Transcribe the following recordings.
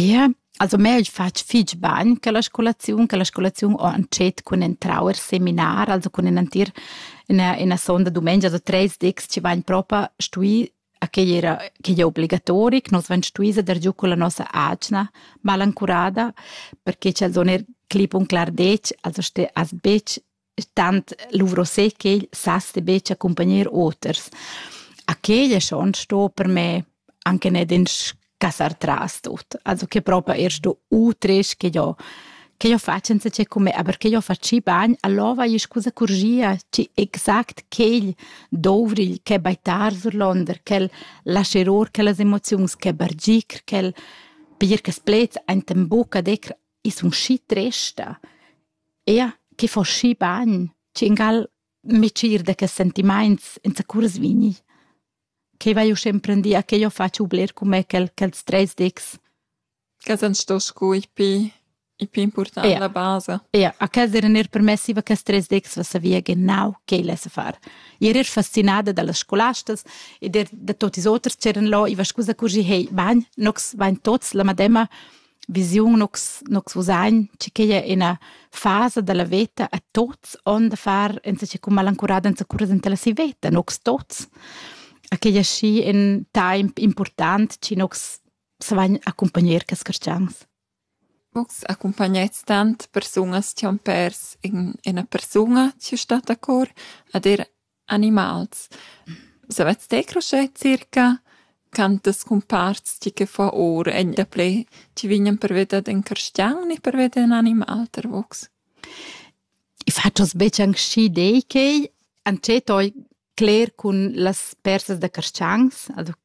Ie, also meu ais fat fich bagn che la scolaziun, che la scolaziun ho antschet cun entrau eir seminar, also cun enantir üna üna sonda, dumengia, so treis dis chi vain propa stui, a quei era quei ei obligatoric, nus vain stui seder giù culla nossa atgna malancurada, perche ch'els hon eir clip un clar detg, also ste as betg tant luvro sé ch'el sas de betg accompagner oters. A quel è schon sto per me anche nicht ins casar tras tut. Also che proprio erst du utres che io che io faccio senza che come, aber che io facci bagn, allora è scusa corgia, ci exact quel dovril che baitar sur londer, quel lasceror, quelle emozioni che bargir, quel per che splez ein tem buca decr is un schi tresta. Ia che fo schi bagn, tschingal mitschier da quels sentimaints zacurs vigni. Quei vai uschè emprendia che jeu fatsch bler cun me quel, quels treis dics. Quels han sto sco i pi, i pi important, ja. la basa. Ja, a quels eran er permessi, va quels treis dics va savia genau quei lessa far. Io ero fascinada dallas scolastas ed er da tot ils oters c'eran là, i va scusa curgi, hey, bagn, nox, bagn tots, la madema, visiun nus nus usain che che è ina fasa della veta a tots on da far enza cum malancurada enza curas enta la si veta nux tots a che è schi in temp important ci nux savan accompagner cas cristians Vus accompagnais tant persunas che han pers in ina persuna che sta a cor ad er Animals. Savets te cruscher circa? Cantas cumparts ti che fa ora? Ein daplè ti vegnan per veder in carstgaun e per veder in animal ter vox? I fatschas betg anc schi dei quei, antschet oi cler cun las persas da carstgangs, also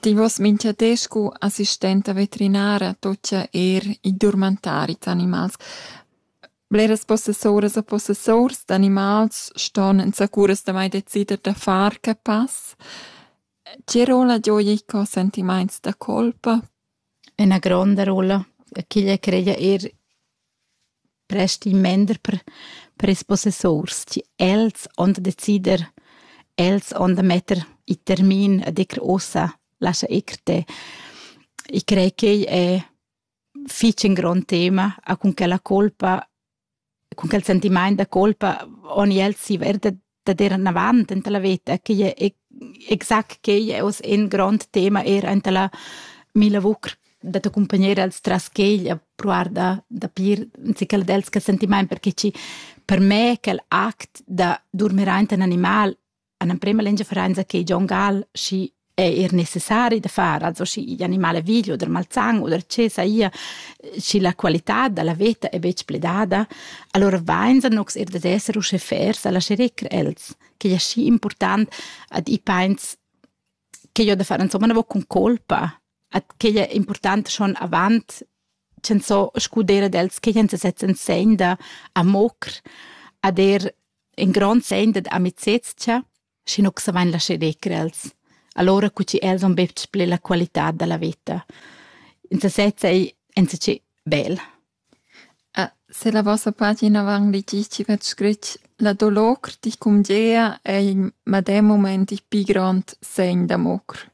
Ti vuos mincha di scu assistenta veterinara tuocha eir i durmentari dad animals. Bleras possessuras e possessurs d'animals ston insacuras damai decider da far que pass. Tge rolla gioja i cò sentimaints da colpa? Üna gronda rolla. Ch'igl creia eir resti mender per, per ils possessors. Ti, els on da decider, els on da metter il termin a dir ossa, lascia ir te. Ich crei che è fitch un grande tema, a con che la colpa, con che il sentiment da colpa on els si verda da dir anavant enta la veta che è exact che è oz in grond tema er enta la mila vucr da te accompagnar als tras quegl a provar da, da pir sical dels che sentiment perché ci per me quel act da dormir enta un animal an prema lengia verenza che John Gall si è er necessari da far also schi animale video der malzang oder che saia schi la qualità dalla veta è betg pledada allora vain sa nox er da esser usche fairs alla scherecr els che è schi important ad i pains che io da far insomma na vo con colpa at che è important schon avant cen so scudere dels che en se setzen segn da amocr a der in grand segn da amicezia schi nu savein lascher decrer els. Allora cu chi els han betg pli la qualità da la vita. In sesezza ei enzatgi bel. Ah, se la vostra pagina van ligici vet scrit la dolor di cumgea ei madem moment i pi grand segn d'amor.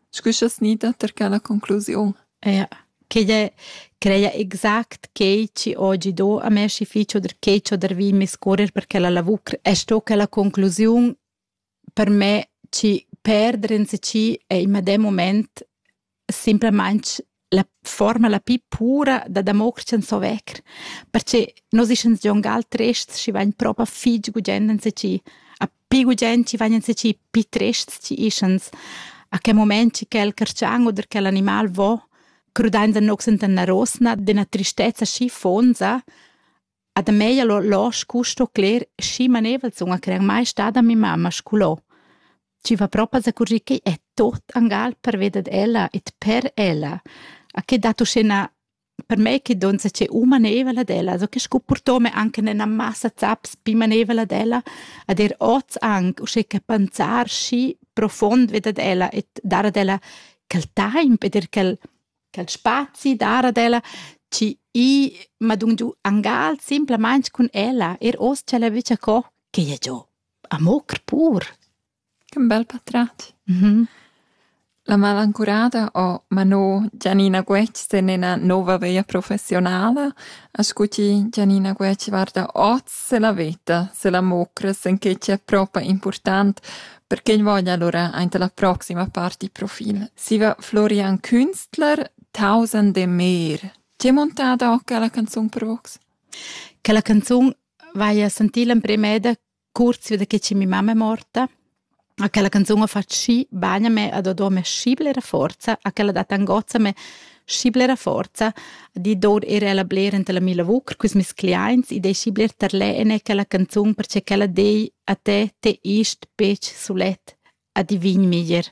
Scu scha's gnida ter quella conclusiun? Eja. Quigl è creia exact quei chi ho gidò a me schi fich oder quei ch'ho dervì miscurrer per quella lavur. E sto quella conclusiun per me chi perder ins chi è in medem mumaint simplamaing la forma la pli pura da damoctschan so vecker, perche nos ischans gion gal trests chi vain propa fich gugent insacì, a pi gugent chi vain insacì pi trests chi ischans, a che moment chi quel carcian oder quel animal vo, crudainsa nox enta üna rosna d'üna tristezza schi fonza, A da mei allura losch custo cler schi maneivel sun a crer mai stada mia mamma scolò. Chi va propa zacurgir ch'ei è tot angal pervia dad ella e per ella. A che dat uschè 'na per mei che donza che u maneivel ad ella, so che sco purtome anche ina massa zaps pi maneivel ad ella, ad er oz anc uschè che panzar schi profond ved ad ella e dar ad ella quel taimp ed er quel quel spazi dar ad ella chi i m'ha dun giu angal simplamaing cun ella eir hoz cha ella vöglia co che ella gio. Amo pur. Che bel patrat. Mhm. La malancurada ho mano Gianina Guetg in ina nova vea professionala. A scuti Gianina Guetg guarda oz se la veta, se la mocra, sen che c'è propa important Perché ün voglia alura aint la proxima part il profil. Siva Florian Künstler, Tausend e mer. Ti hai montado che la canzun per vox? Che la canzun vaia sentì l'emprimeda kurz wieder che ci mi mamma è morta. A quella canzone ho fatto sci bagna me ad adore me scibla era forza, a quella data angozza me schi blera forza di dor era la bler enta la mila vucr cus mes cliaints e dei schi bler tarlè ene quella canzun perche quella dei a te te ist pec sulet a divin miger